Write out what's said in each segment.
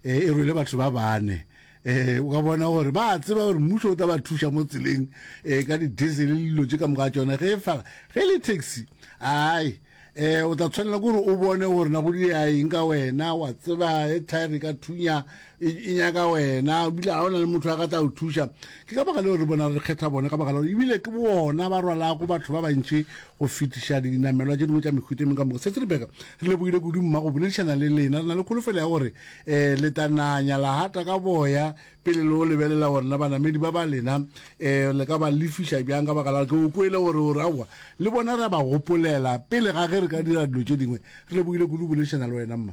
e e rwele batho ba bane e o ka bona gore ba tseba gore mmušo o tla ba thuša mo tseleng e ka di-diesel le dilo tše ka moka tsona ge e fala ge e le taxi ai e o tla tshwanela kore o bone gore na go diaeng ka wena wa tseba e thaere ka thunya e, e nyaka wena bile ga o na le motho a ka tla o thuša Ke ka baka leo re bona re kgetha bona, ka baka la gore ebile ke bona ba rwalago batho ba bantši go fetiša dinamelwa tše dingwe tša mehuta e mengwe ka moka. Setse re beka re lebogile kudu mma go boledišana le lena. Re na le kholofelo ya gore um le tla nanya la hata ka boya pele le o lebelela gore na banamedi ba ba lena um le ka ba lefiša bjang, ka baka la gore ke o kwele gore o re aowa le bona re a ba gopolela pele ga ge re ka dira dilo tše dingwe. Re lebogile kudu go boledišana le wena mma.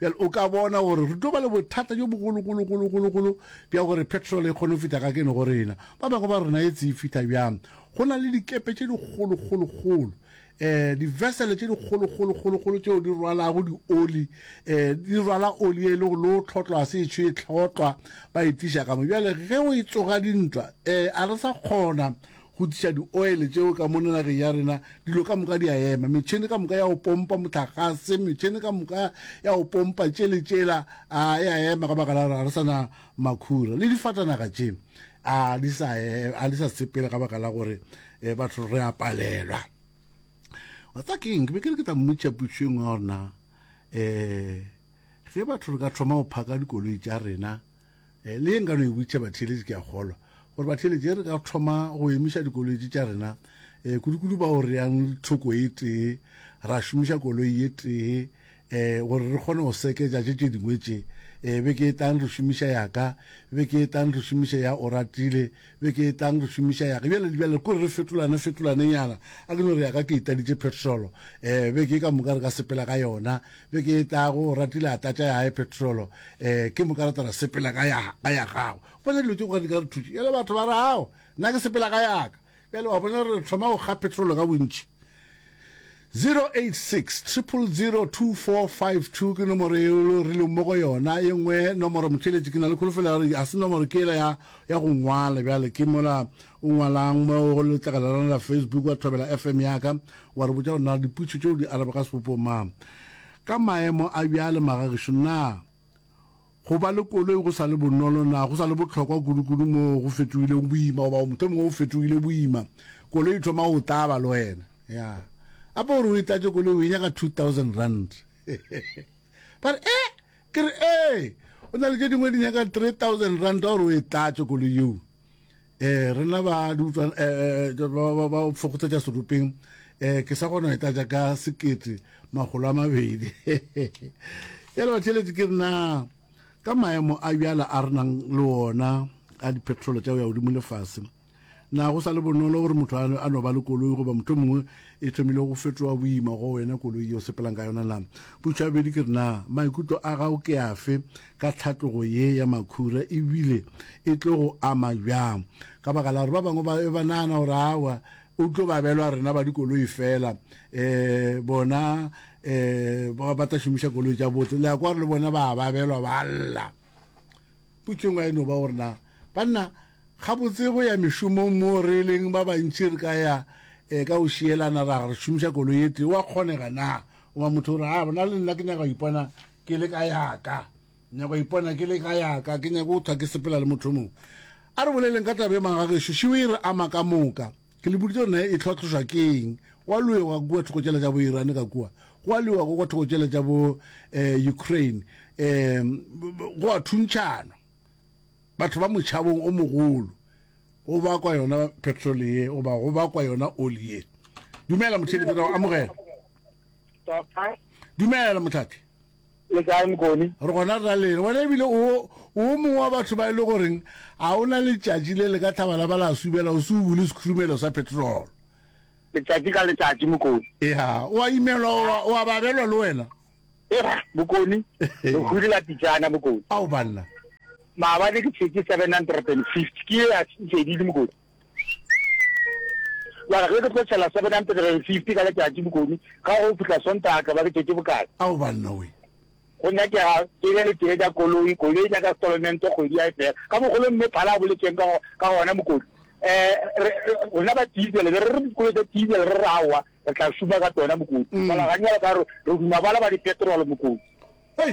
Bjale o ka bona gore re tlo ba le bothata bjo bogologologologologolo bja gore petrol e kgone go feta ka kene go rena. Ba bangwe ba rena e tsee feta bjang. Go na le dikepe tše dikgolokgolokgolo, um divesele tše dikgolokgolokgolokgolo tšeo di rwalago dioli, um di rwala oli e lego le o tlhotlwa se etsho e tlhotlwa ba e tliša ka mo. Bjale ge o e tsoga dintwa, um a re sa kgona Go tliša dioele tšeo ka mona nageng ya rena, dilo ka moka di a ema. Metšhene ka moka ya go pompa mohlagase, metšhene ka moka ya go pompa tše le tšela, a e a ema ka baka la gore ga re sa na makhura. Le difatanaga tše a di sa, a di sa sepela ka baka la gore batho re a palelwa. Wa tseba ke eng? Ke be ke re ke tla mmotšiša potšišo e nngwe ya gore na um ge batho re ka thoma go phaka dikoloi tša rena, E le ye nka no e boditša batheeletši, ke a kgolwa, gore batheeletši, ge re ka thoma go emiša dikoloitše tša rena, e, kudukudu bao re yang le thoko e tee, ra šomiša koloi e tee, e, gore re kgone go seketša tše tše dingwe tše, e, beke e tlang re šomiša ya ka, beke e tlang re šomiše ya Oratile, Beke e tlang re šomiša ya ge. Bjale, bjale kore re fetolane, fetolanenyana. A ke no re ya ka ke e tladitše petrolo. Ee, beke e ka moka re ka sepela ka yona. Beke e tlago, o ratile a tlatša ya hae petrolo. Ee, ke moka re tla ra sepela ka ya, ka ya gagwe. O bona, dilo tše kgwale di ka re thuša. Bjale batho ba re, Ao, nna ke sepela ka ya ka. Bjale, wa bona, re thoma go kga petrolo ka bontši. 086 000 2452 ke nomoro yeo lo rileng mo go yona ye nngwe nomoro motheletši ke na le kholofelo ya gore a se nomoro ke ela ya ya go ngwala bjale ke mola o ngwalang mo go letlakala la la facebook wa thobela fm ya ka wa re botša gore na diputšo tšeo di arabega sebopong mang ka maemo a bjale magagešo na Go ba le koloi go sa le bonolo na? Go sa le bohlokwa kudukudu moo go fetogilego boima, goba go mohlomongwe go fetogile boima. Koloi e thoma go taba le wena. Ya. Gape gore o e tlatše koloi o e nyaka two thousand rand. Ba re, Eh! Ke re, Ee! Go na le tše dingwe di nyaka three thousand rand gore o e tlatše koloi yeo. eh rena ba di utlwa eh, eh, eh ba ba fokotsa tsa serupeng eh ke sa gona eta ja ka sekete magolo a mabedi ya le batšhelete ke rena ka maemo a bjala a renang le ona a dipetrolo tša go ya godimo lefase na go sa le bonolo gore motho a no ba le koloi goba motho mongwe e thomile go fetoa boima go wena koloi yo sepelang ka yona na putšhabedi ke rena maikutlo a gago ke afe ka tlhatlogo ye ya makhura e bile e tlo go ama bjang, ka baka la gore ba bangwe ba be ba nagana gore aowa o tlo ba belwa rena ba dikoloi fela um bona um ba tla šomiša koloi tša botse le ya kwa gore le bona ba ba belwa ba lla. Potšong a e no ba gore na banna gabotse go ya mešomong mo re leng ba bantši re ka ya um ka go šielana ra re šomiša koloi e tee wa kgonega na goba motho gore a bona le nna ke nyaka go ipona Ke le ka yaka. Nyaka go ipona ke le ka yaka. Ke nyaka go thwa ke sepela le motho mongwe. A re boleleng ka taba ye magagešo. Šiwi e re ama ka moka. Ke le boditše gore nae e hlwatlhošwa ke eng. Go a lwewa ka kua thoko tšela tša bo Iran ka kua. Go a lwewa ka kua thoko tšela tša bo eh, Ukraine. Eh, go a thuntšhanwa. Batho ba motšhabong o mogolo. Go bakwa yona petrol ye, goba go bakwa yona oli ye. Dumela motheletši, re a go amogela. Doctor. Dumela motlhathi. Le kae mokone? Re gona ra lena. Wena ebile o o mongwe wa batho ba e le goreng a o na letšatši le le ka tlhaba la ba la subela o se o bule sekhurumelo sa petrol. Letšatši ka letšatši mokone. Ya, o a imelwa o a babelwa le wena. Era mokone. Re hurela pitšana mokone. Ao banna. Maabane ke tshetse 750 ke a tshedile mokone. wa re ge ke tlo tšhela 750 ka letšatši bokoni ga go fihla sontaga tla ba ke tšetše bokae Ao banna we. go nyakega ke be le tee tša koloi koloi tša ka stolomento kgwedi ya e fela ka mogolo mme phala a boletšeng ka ka gona mokoni um re rena ba diesel be re re dikolo tša diesel re re aowa re tla šuma ka tsona mokoni fala ganyalo ka re re duma bala ba dipetrol mokoni Hei!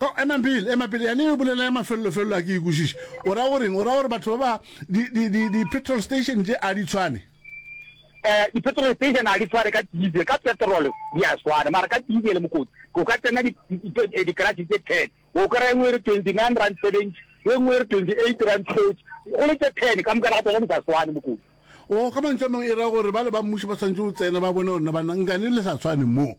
Oh, emang pele, ema pele, yane e bolela ya mafelelo-felelo a ke e kwešiše. O ra go reng? O ra gore batho ba ba, di, di, di, di petrol station tše a di tshwane? Eh, di petrol station a di tshwane ka diesel, ka petrol di a swana, mara ka diesel mokotsi, o ka tsena di, di, di, di, di garage tše ten, o kry-a engwe e re twenty nine rand seventy, e nngwe e re twenty eight rand thirty, go le tše ten, ka moka ga tsona di sa swane mokotsi. Oh, ka mantšu a mangwe e ra gore ba le ba mmušo ba swanetše go tsena ba bone gore na ba nka ne le sa tshwane moo.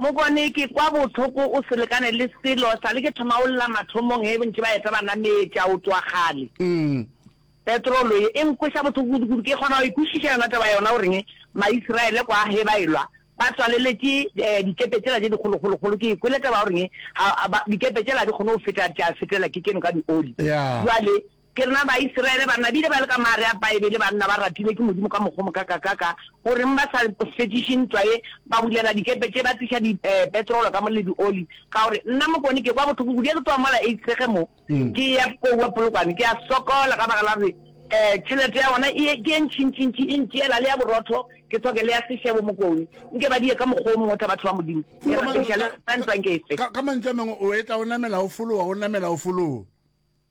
Mokone, ke kwa bohloko o se lekane le selo sa le ke thoma o lla mathomong he bontši ba eta banameti a o twa kgale. Petrolo ye e nkweša bohloko kudu-kudu ke kgona go e kwešiša yona taba yona o reng Maisraele kwa he ba e lwa ba tswaleletše dikepe tšela tše dikgolokgolokgolo ke e kwele taba o reng dikepe tšela ga di kgone go feta tša fetelwa ke keno ka dioli bjale Ke rena Baisrayele ba nabile ba le ka maare a Baebele, banna ba ratilwe ke Modimo ka mokgwa o mokakakaka, goreng ba sa fetšiše ntwa ye, ba bulela dikepe tše, ba tliša dipetrolo ka mo le dioli, ka gore, Nna Mokone ke kwa bohloko kudu ge ke tloga mola Eisrege mo, ke eya kua Polokwane, ke a sokola ka baka la gore tšhelete ya bona e ke ye ntšintšintši, e ntšeela le ya borotho, ke tlhoke le ya sešebo. Mokone, nke ba di ye ka mokgwa o mongwe tha batho ba Modimo, ke rapediša le wena ntwa nke e fe. Ka mantšu a mangwe, o etla o namela o fologa, o namela o fologa.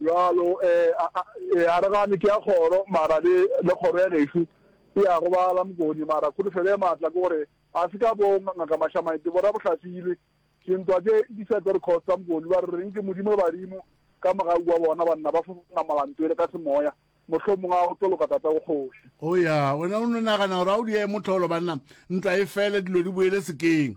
bjalo um a re gane ke ya kgoro mara le kgoro ya gešu e ya robala mokone mara kholofelo e maatla ke gore a se ka bo ngaka mašamaete bo rabohlafile dintwa tse di sa tlo re khosta mokone ba re reng ke modimo le badimo ka moga wa bona banna ba fofana molanto ele ka semoya mohlho mongwe a go tlo loka tata go kgoši o ya wena o no nagana gore a o di ye motlholo banna ntwa e fele dilo di boele sekeng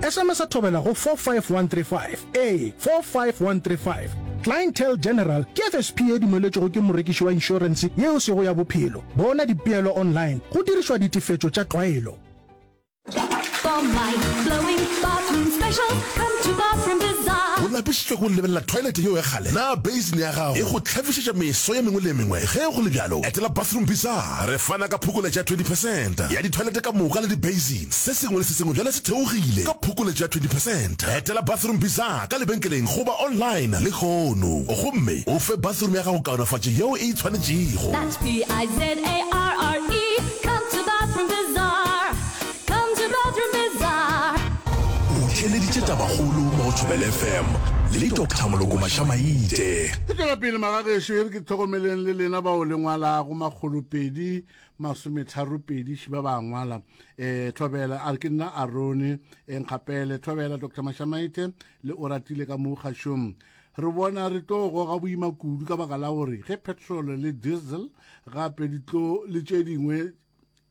Sms a thobela go 45135, ee, 45135. Clientele General ke FSP ye dumeletšwego ke morekiši wa inšorense ye o sego ya bophelo. Bona dipeelo online go dirišwa ditefetšo tša tlwaelo. For my flowing bathroom special, come to Bathroom Bazaar. O lapišitšwe ke go lebelela thwaelete yeo ya kgale? Na beisene ya gago e go hlafišetša meso ye mengwe le ye mengwe? Ge go le bjalo, etela Bathroom Bazaar. Re fana ka phokoletšo ya 20 percent ya dithwaelete ka moka le dibeisene. Se sengwe le se sengwe bjale se theogile ka phokoletšo ya 20 percent. Etela Bathroom Bizarre ka lebenkeleng goba online lehono gomme o fe bathroom ya gago kaonafatšo yeo e e tshwanetšego. That's B-I-Z-A-R-R-E Come to Bathroom Bizarre Come to Bathroom Bizarre O theeleditše tabakgolo mo go Thobela FM le Doctor Moloko Mašamaite. Re tšwela pele, Magagešo, e re ke hlokomeleng le lena bao le ngwalago makgolopedi masometharopedi ši ba ba ngwala um eh, tlhobela a re ke nna arone enkgapele eh, tlhobela dr mashamaite le o ratile ka mo kgašong re bona re tlo goga boima kudu ka baka la gore ge petrol le diesel gape di tlo le tše dingwe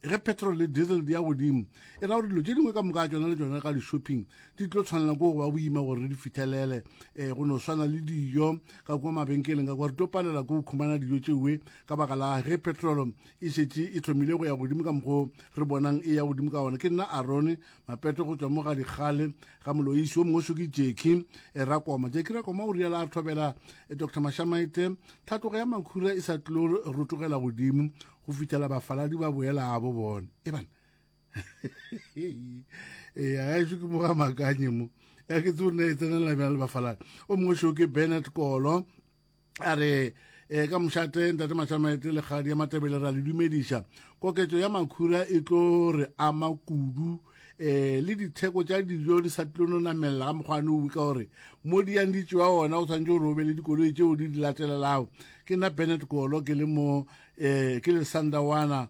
ge petrol le diesel di ya godimo e ra gore dilo tše dingwe ka moka tsona le tsona ka di-shopping di tlo tshwanela ko go ba boima gore re di fitlhelele um go no swana le dijo ka kwa mabenkeleng ka kwa re tlo palela ko go khumana dijo tšeoe ka baka la ge petrolo e šetše e tlhomile go ya godimo ka mokgwa re bonang e ya godimo ka ona ke nna arone mapeto go tswa mo ga dikgale ga moloisi wo mongwe soki jeki e rakoma jeki rakoma o riala a thobela e dr mashamaite thatogo ya makhura e sa tlo rotogela godimo go fitlhela bafaladi ba boelabo bone e bana ee a e šo ke mo ga makanye mo ya ke tsone e tsenela bjana le bafaladi o mongwe šo ke bennett kolo a re e ka mošate ntate mašamete lekgadi ya matebele ra le dumediša koketso ya makhura e tlo re ama kudu eh le ditheko tša dijo di sa tlono namelela ga mokgwane o ka gore mo di yang di tšewa ona o tshwanetse o robe le dikoloi tšeo di di latelelago ke nna bennet kolo ke le mo um ke le sandawana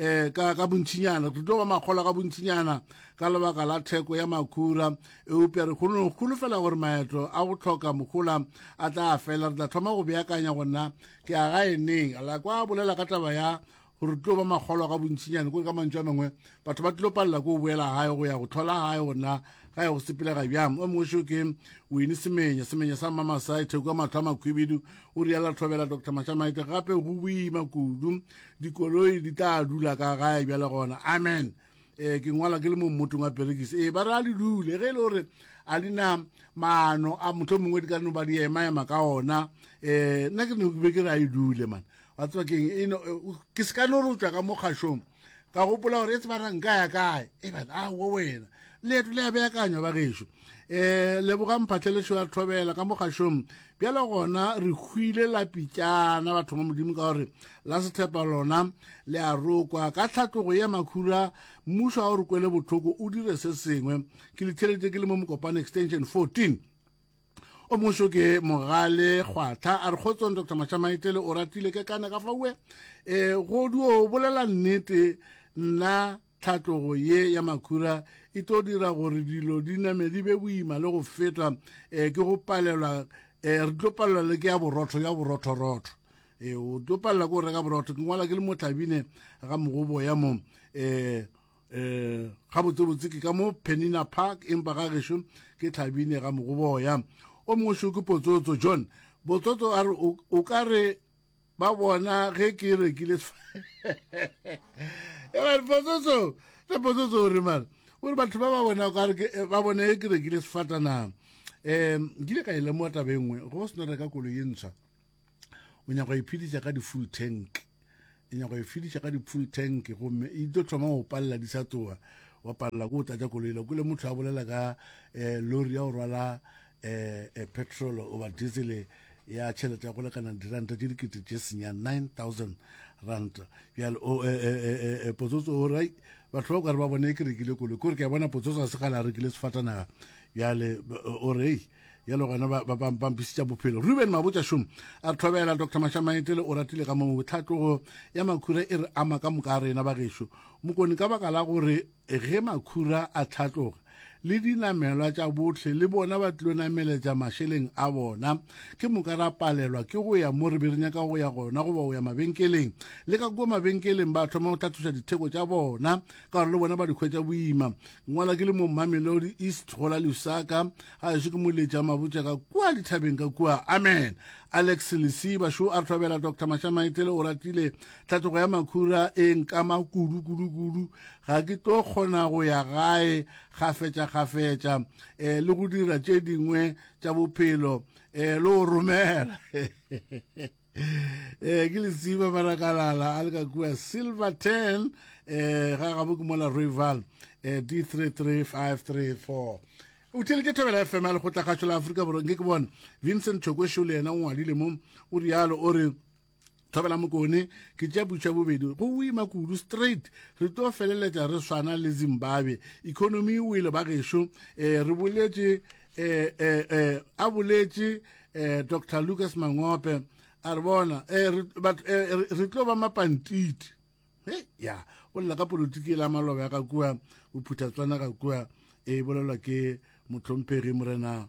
eh ka ka bontšinyana re tlo ba makgola ka bontšinyana ka lebaka la theko ya makhura eupša re kgone kgolofela gore maetlo a go tlhoka mogola a tla fela re tla thoma go beakanya go nna ke a ga eneng la kwa bolela ka taba ya gore tlo ba makgolo ka bontšinyane kore ka mantšu a mangwe batho ba tlo palela ko o boela gae go ya go tlhola gae gona ga ya go sepelega bjang o mongwe seo ke wene semenya semenya sa mmamasai theko ya matlho a makhubidu o riala tlhobela dr matšamaite gape go boima kudu dikoloi di tla dula ka gae bjale gona amen um ke ngwala ke le mo mmotong wa perekise ee ba re a di dule ge e le gore a di na maano a motlho mongwe di ka no ba di emaema ka ona um nna ke ne be ke re a e dule man wa tseba keng e ke se ka no re tswa ka mo kgašong ka gopola gore e tseba ra nka ya kae e bana a wo wena leeto le a beakanywa ba gešo um lebogang phatlhelešo ya thobela ka mogašong bjale gona re hwile lapitšana batho ba modimo ka gore la sethepa lona le a rokwa ka tlhatlogo ye makhura mmušo a o re kwele botlhoko o dire se sengwe ke lethelete ke le mo mokopane extension 14 o moso ke mogale kgwatlha a re kgotsong dr mashamaetele o ratile ke kane ka faue um e, godi o bolela nnete nna Tlhatlogo ye ya makhura e tlo dira gore dilo di name di be boima le go feta um ke go palelwa um re tlo palelwa le ke ya borotho ya borothorotho e o tlo palela ko reka borotho ke ngwala ke le motlhabine ga mogobo ya mo eh eh ga botsebotse ke ka mo penina park empa ga gešo ke tlhabine ga mogoboya o mongwe šo ke potsotso john botsotso a re o ka re ba bona ge ke rekile pototso le pototso o re mara o re batho ba ba bona eh, ba bone ge ke rekile sefatanang um nkile ka e lemoa taba e nngwe go se no reka kolo ye ntshwa o nyako iphedisa ka di-full tank e nyako iphedisa ka di-full tank gomme e tlo thoma go palela di sa tsoa wa palela ko o tlatsa koloile kole motho a bolela ka um lori ya go rwala e petrolo goba diesel ya tšhelete ya go lekana diranta tše dikete tše senya 9000 rand bjale o e, e, e, e potsotso o re batho ba o kare ba bone e ke rekile kolo kore ke a bona potsotso a se gale a rekile sefatanaga bjale o re yalo gona bampisitša bophelo ruben mabotša šomo a re thobela dr mashamaetele o ratile ka mongwe botlhatlogo ya makhura e re ama ka moka a rena bagešo mokone ka baka la gore Ge makhura a hlatloga, le dinamelwa tša bohle le bona ba tlilo nameletša mašeleng a bona. Ke moka ra palelwa ke go ya mo re be re nyaka go ya gona goba go ya mabenkeleng. Le ka kua mabenkeleng ba thoma go hlatloša ditheko tša bona ka gore le bona ba di hwetša boima. Ngwala ke le mo Mamelodi East go la Lusaka, ga ešo ke mo letša mabotša ka kua dithabeng ka kua. Amen. Alex Lesiba, Šo a re thobela Doctor Mashamaetlele Oratile Tlhatlogo ya makhura e nkama kudu kudu kudu, ga ke tlo kgona go ya gae kgafetša kgafetša e, le go dira tše dingwe tša bophelo e, le go romela e, ke lesiba barakalala a le ka kua silverton e, ga gabo ke mola rival e, d 335334 o theletše thobela fm ya lekgotla kgašo la aforika borwa nke ke bone vincent chokwešo le yena o ngwadile mo o rialo o re thobela mokone ke tša butšha bobedi go wima kudu straight re tlo feleletša re swana le zimbabwe economy o ile ba gešo um eh, re boletše um um a boletše um dr lucas mangope a re bona um re tlo ba mapantiti e ya o lela ka politiki e la maloba ya ga kua bophuthatswana ga kua e bolelwa ke motlhomphegi morena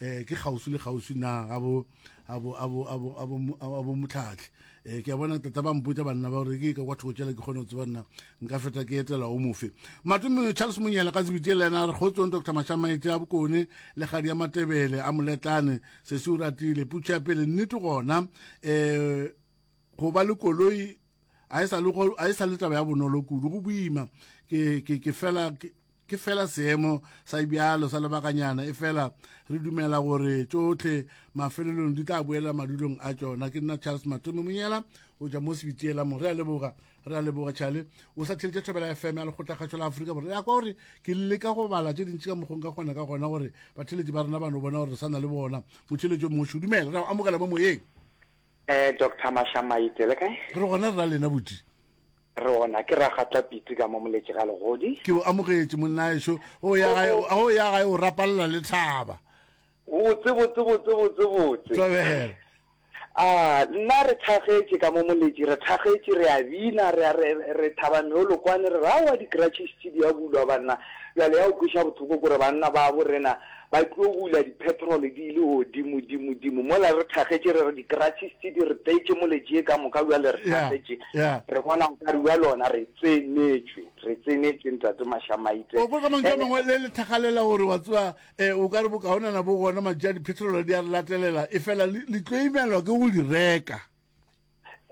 eh ke kgauswi le kgauswi na abo abo abo abo abo abo mutlhatlhe eh ke bona tata ba mpotsa banna ba re ke ka kwa thoko tšela ke kgone go tseba nna nka feta ke etela o mofe matume Charles Monyela ka tsebitse le ena re kgotsong Dr Mashamaetse a bokone le gadi ya matebele a moletlane se se uratile putša pele nnete gona eh go ba le koloi a e sa le go a e sa le taba ya bonolo kudu go boima ke ke ke fela ke fela seemo sa bjalo sa lebakanyana e fela re dumela gore tsotlhe mafelelong di tla boela madulong a tsona ke nna charles matome monyela o ja mo sebitiela mo re a leboga re a leboga chale o sa theletša thobela fm ya lekgotlakgatšo la aforika borwa ya kwa gore ke leka go bala tše dintši ka mokgong ka kgona ka gona gore batheletši ba rena ba no bona gore re sa na le bona motheletšo moši dumela re amogela mo moyeng Eh, Doctor Mashamaite, le kae? Re gona rra lena buti. Re gona, ke Ragatla Pitsi ka mo Moletše ga Legodi. Ke o amogetše monnaexo, o ya gae, o ya gae o rapalela le thaba. Botse, botse, botse, botse, botse. Tlabela. Ah, nna re thagetše ka mo Moletše, re thagetše, re a bina, re, re, re thaba meolo kwane, re re aowa di-cratches tše di a bulwa banna. Bjale ya o kweša bothoko kore banna ba bo rena Ba tlo hula dipetrol di ile godimo dimo dimo mola re thakgetše re re di-crutches tse di re petše mole tše ka moka bjale re Yeah, thakgetše yeah. re bona nkare bja lona re tsenetšwe re tsenetšwe ntate Mashamaite o kwa ka mantšu a Ene- mangwe le lethagalela gore wa tseba um o ka re bokaonana bo gona mantšu a dipetrolo di a re latelela e fela le le tlo imelwa ke go di reka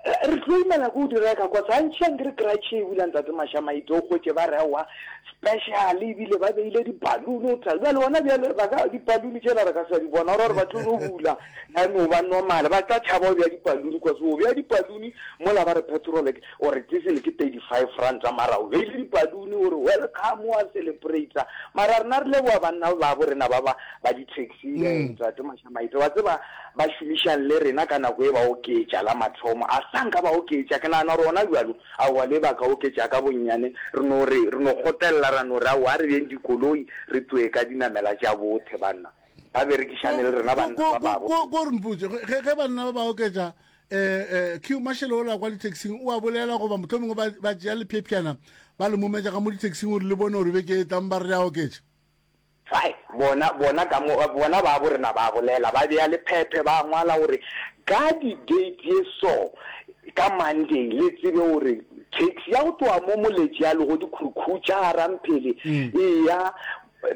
Re tlo imela ko o di reka kwa Santšhi a nkere kratšhe e bula ntate Mashamaitse o hwetše ba rewa special ebile ba beile di balloon o tla bjale ona bjale ba ka di balloon tšela re ka sa di bona gore ba tlo no bula ya no ba normal ba tla tšhaba o bja di balloon kwa se o bja di balloon mola ba re petrol o re diesel ke 35 rand tsa mara o beile di balloon o re welcome wa celebrate mara rena re leboa banna ba bo rena ba ba ba di Sile, mm. Ntate Mashamaite, wa tseba ba šomišang le rena ka nako e ba oketša la mathomo. A sa nka ba oketša, ke nagana gore ona bjalo, aowa le ba ka oketša ka bonnyane, re no re, re no kgotelela ra no re aowa re beng dikoloi, re tloe ka dinamela tša bothe banna. Ba berekišane le rena banna ba babo. Ko ko re mpotše, ge ge banna ba ba oketša eh eh Q mashelo ola kwa ditaxing o a bolela goba motho mongwe ba ba tšea lephephyana ba le mometša ga mo ditaxing gore le bone gore beke e tlang ba re a oketša. Ai, bona, bona ka mo, bona babo rena ba bolela, ba bea lephephe, ba ngwala gore, Ka di date ye so, ka Monday, le tsebe gore, taxi ya go tloga mo Moletši ya lego Dikhurukhucha, Garamphele, e ya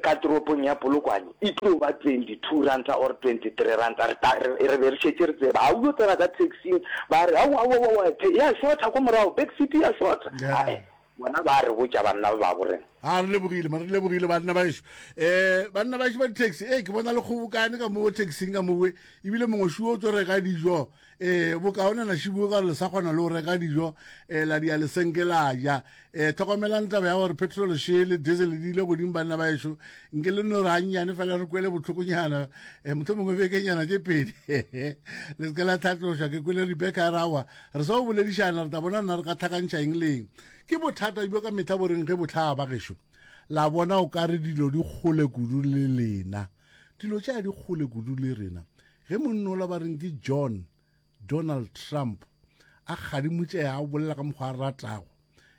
ka toropong ya Polokwane, e tlo ba twenty-two ranta or twenty-three ranta. Re ta, re, re be re šetše re tseba. Ha o yo tsena ka taxi-ing, ba re, Aowa, aowa, aowa, ya shotha kwa morago, back seat ya shotha. Ai, Bona ba a re botša banna ba babo reng? A re lebogile ma, re lebogile banna baešo. E, banna baešo ba ditaxi, e, ke bona le kgobokane ka mowe taxing ka mowe, ebile mongwe šiwo o tso reka dijo. E, bokaone na šiboe ka gore le sa kgona le go reka dijo, e, la dia le senke la ja. E, tlhokomelang taba ya gore petrol še le diesel di ile godimo banna baešo. Nke le no re gannyane fela re kwele bohlokonyana, e, mohlomongwe bekenyana tše pedi, le se ke la hlatlošwa. Ke kwele Rebecca a ra wa. Re sa o bolediša na re tla bona na re ka hlakantšha eng le eng. Ke bothata bjo ka mehla bo reng ge bo hlaga, bagešo? La bona, o ka re dilo di kgole kudu le lena. Dilo tša di kgole kudu le rena. Ge monnola ba reng ke John, Donald Trump, a kgadimotšega, a bolela ka mokgwa a ratago,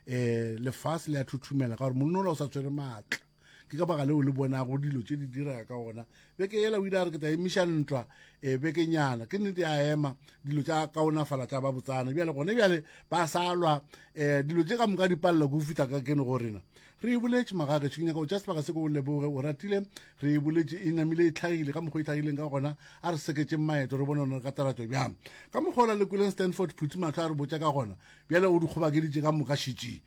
ee, lefase le a thuthumela ka gore monnola o sa tshwere maatla. ke ka baka leo le bonago dilo tše di direga ka gona beke yela o ile a re ke tla emiša ntwa um e, bekenyana ke nnete a ema dilo tša kaonafala tša ba botsana bjale gone bjale ba sa lwa um dilo tše ka moka di palela ko fitlha ka kene go rena re e boletše magage ke nyaka o tša sebaka se ko o leboge o ratile re e boletše e namile e tlhagile ka mokgwa e tlhagileng ka gona a re seketseng maeto re bone one ka taratšo bjang ka mokgwa o la le kweleng stanford phuthi matlho a re botša ka gona bjale o di kgobakeditše ka moka šetšeng